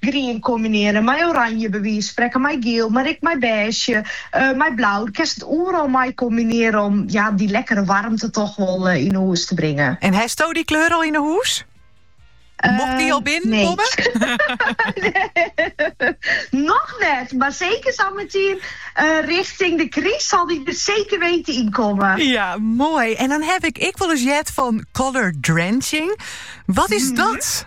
Grien kombinearje mei oranje, by wize sprekken mei giel, mar ek mei bêzje, mei blau. Do kinst it oeral mei kombinearje om ja dy lekkere warmte toch wol yn 'e hûs te bringen. En hasto dy kleur al yn 'e hûs? Mocht dy al binnen komme? Noch net, mar seker sa meitertiid richting de kryst sil dy der seker witte yn komme. Ja, moai. En dan haw ik ek wol ris heard fan colour drenching. Wat is dat?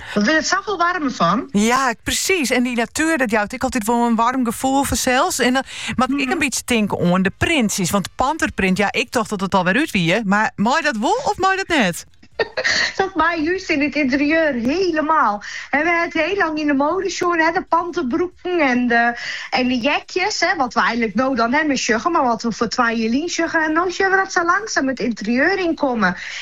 Wat wurdt it safol waarmer fan? Ja, presiis. En dy natuer, dat jout ek altyd wol in warm gefoel fansels. En dan moat ik ek in bytsje tinke oan de printsjes. Want panterprint, ja, ik tocht dat it alwer út wie. Mar mei dat wol of mei dat net? Dat mei just yn it ynterieur helemaal. En we hawwe it hiel lang yn de moade sjoen, hè, de panterbroeken en de, en de jekjes. Hè, wat we eigenlik no dan hawwe, sjogge, mar wat we foar twa jier seagen. En no sjogge we dat sa langsaam it ynterieur ynkommen.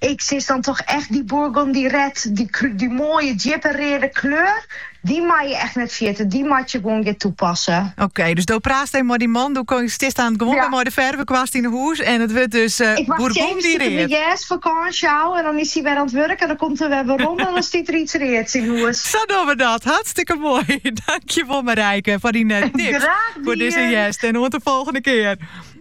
Ik sis dan toch echt dy burgundy red, dy moaie djippe reade kleur, dy mei je echt net ferjitte, dy moat je gewoan gean tapasse. Oké, dus do praatste mei dyn man, do stiest aanst gewoan wer mei de fervekwast yn 'e hûs en it wurdt dus burgundy red. Ik wacht tsjintwurdich de hjerstfakânsje ôf en dan is hy wer oan it wurk en dan komt er wer werom en dan stiet der iets reads yn hûs. Sa dogge we dat. Hartstikke moai. Dankjewol Marijke foar dyn tips foar dizze hjerst en oant de folgjende kear.